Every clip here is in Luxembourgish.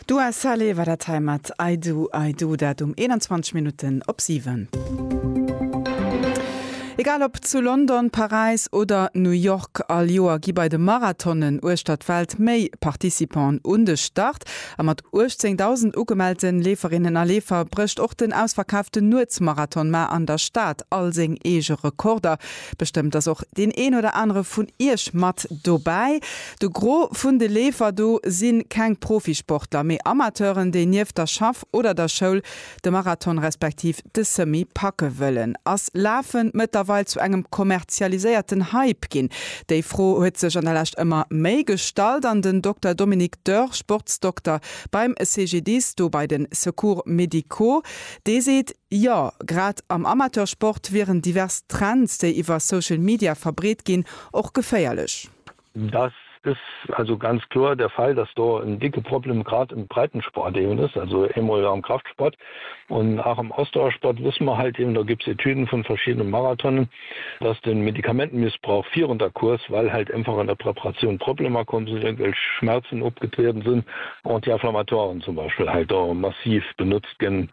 D'Dua Saleh war dat hei mat I do, I do, dat um 21 Minutten op 7. Egal ob zu London, Paräis oder New York, all Joer gi bei de Marathonen uechter d'Welt méi Participanten un de Start. A mat 18.000 ugemellte Leeferinnen a Leefer brécht och den ausverkaaften Nuetsmarathon mar an der Stad all seng eege Rekorder. Bestëmmt ass och deen een oder anere vun Iech mat dobäi. De Gros vun de Leefer do si keng Profisportler, mee Amateuren, déi nieft der Schaff oder der Schoul de Marathon respektiv de Semi packe wëllen. Ass Lafen mëttlerweil zu engem kommerzialiséierten Hype ginn? Déi Fro huet sech an der Lescht ëmmer méi gestallt an den Dokter Dominique Dörr, Sportsdokter beim CGDIS, do bei de Secours médicaux, dee seet, Jo, grad am Amateursport wieren divers Trends, déi iwwer Social Media verbreet ginn, och geféierlech. Dass ës also ganz kloer der Fall, dass do en dicke Problem grad im Breitensport eben ës, also eemol am Kraftsport und auch am Ausdauersport wësse mer halt eben, do gëpps Etüden vun verschiedene Marathonen, dass den Medikamentenmissbrauch virun der Course, well halt einfach an der Preparatioun Problemer komm sinn, irgendwelch Schmerzen opgetrieden sinn, Anti-inflammatoiren zum Beispiel halt do massiv benutzt. gesetzt ginn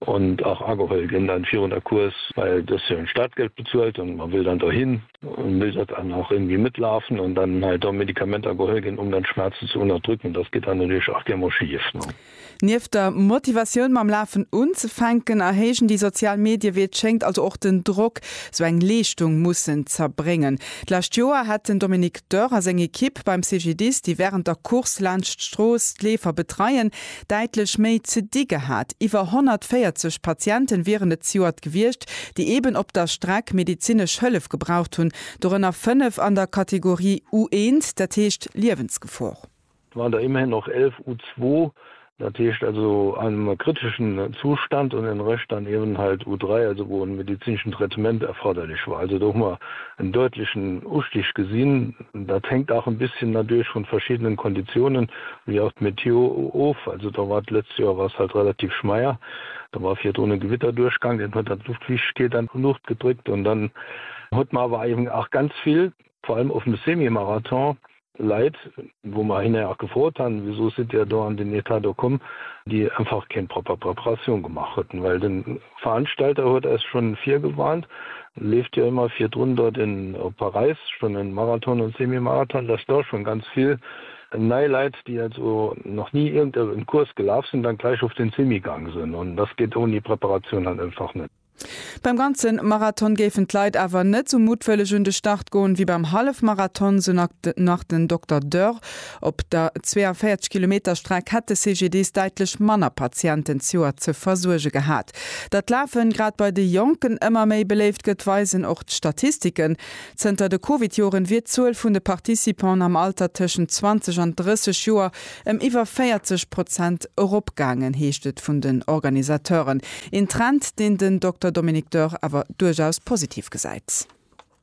an och ageholl ginn dann virun der Course, well et ass jo en Startgeld bezuelt an man will dann dohin an will dat dann och irgendwie mitlaufen an dann hei do Medikamenter geholl ginn um dann d'Schmerzen ze unterdrücken, das geht dann natürlich auch gär mol schief, ne. Nieft der Motivatioun mam Lafen unzefänken, erhéijen déi sozial Medie wéi et schéngt also och den Drock, sou eng Leeschtung mussen z'erbréngen. D'lescht Joer hätt den Dominique Dörr a seng Ekipp beim CGDIS, déi wärend der Course laanscht d'Strooss d'Leefer betreien, däitlech méi ze di gehat. Iwwer 140 Patienten wieren et zejoert gewiescht, déi eben op der Streck medizinesch Hëllef gebraucht hunn, dorënner fënnef an der Kategorie U1, dat heescht Liewensgefor. War der immerhin och 11 U2, dat heescht also einem kritischen Zustand, und den Rest dann eben halt U3, also wou en medizineschen Traitement erforderlich war. Also do hu mer en däutlechen Ustig gesinn. Dat hängt auch en bisschen nadurch vun verschiddenen Konditionen wéi auch d'Meteo of. Also do war d'lëtzt Joer war s'halt relativ schmeier. Do war virdrun e Gewitter duerchgang, deen huet dann d'Luftfiichtkeet an d'Luucht gedréckt un dann huet mer awer eben auch ganz vill, vor allem op dem Semi-Marathon, Leit, wou mer hinner och gefrot han, Wisou sidd Dir do an deen Etat do komm? déi einfach keng propper Preparatioun gemaach hueten, well den Veranstalter huet eis schon virgewarnt, leeft jo emmer virdrun dort en op Paräis schon en Marathon en Semi-Marathon, dass dort schon ganz vill nei Leit déi also nach nie irgend e en Kurs gelaaf sen, dann gleich op den Semi gang sen an dass geet oni Preparatioun halt einfach net. Beim ganzen Marathon géifen d'Leit awer net sou muttwëlleg un de Start goen wéi beim Hallefmarathon, sou nach den Dokter Dörr. Op der 42 Kilometer Streck hätt de CGDIS däitlech manner Patienten d'Joer ze versuerge gehat. Datt d'Lafen grad bei de Jonken ëmmer méi beléift gëtt, weisen och d'Statistiken. Zënter de Covid-Joren wier d'Zuel vun de Participanten am Alter tëschent 20 an 30 Joer ëm iwwer 40 Prozent eropgaangen, heescht et vun den Organisateuren. Een Trend, deen den Dokter Dominique Dörr awer duerchaus positiv gesäit.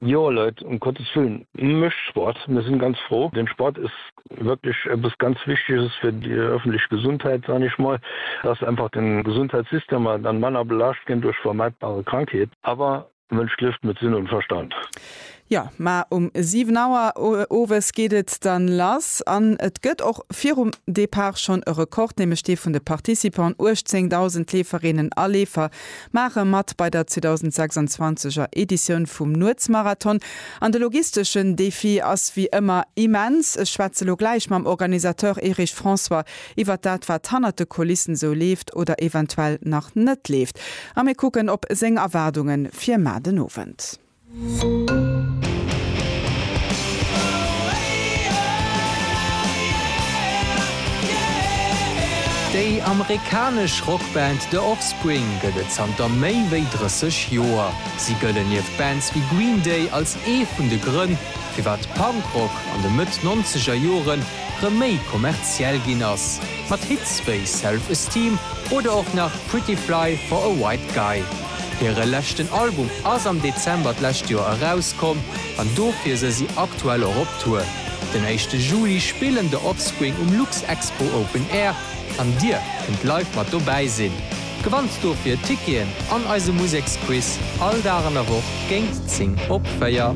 Jo Leit, um Gottes Willen, mécht Sport, mir sinn ganz fro. Den Sport ass wierklech eppes ganz Wichteges fir déi öffentlech Gesundheit, soen ech mol, dass einfach den Gesundheitssystem an dann manner belaascht ginn duerch vermeidbare Krankheet. Awer Mënsch lieft mit Sinn und Verstand. Jo, mä um 7 Auer owes geet et dann lass an et gëtt och virum Départ schonn e Rekord, nämlech dee vun de Participanten, 18.000 Leeferinnen a Leefer, Maache mat bei der 2026 er Editioun vum Nuetsmarathon an de logisteschen Defi ass wéi ëmmer immens. Ech schwätze lo gläich mam Organisateur Erich François iwwert dat wat hannert de Kulissen sou leeft oder eventuell nach net leeft a mir kucken op seng Erwaardunge fir mar den Owend. Déi amerikanesch Rockband The Offspring gëtt et zanter méi wéi 30 Joer. Si gëllen nieft Bands wéi Green Day als ee vun de Grënn, firwat Punkrock an de Mëtt-Nonzeger Jore rëm méi kommerziell ginn ass, mat Hits wéi Self Esteem oder och nach Pretty Fly for a White Guy. Hire leschten Album ass am Dezember d'lescht Joer erauskomm an dofir se si aktuell och op Tour. Den éischte Juli spillen The Offspring um Luxexpo Open Air an Dir kënnt live mat dobäi sinn. Gewannt dofir Ticketen an eise Museksquiz all Dag an der Woch géint 10 op 4.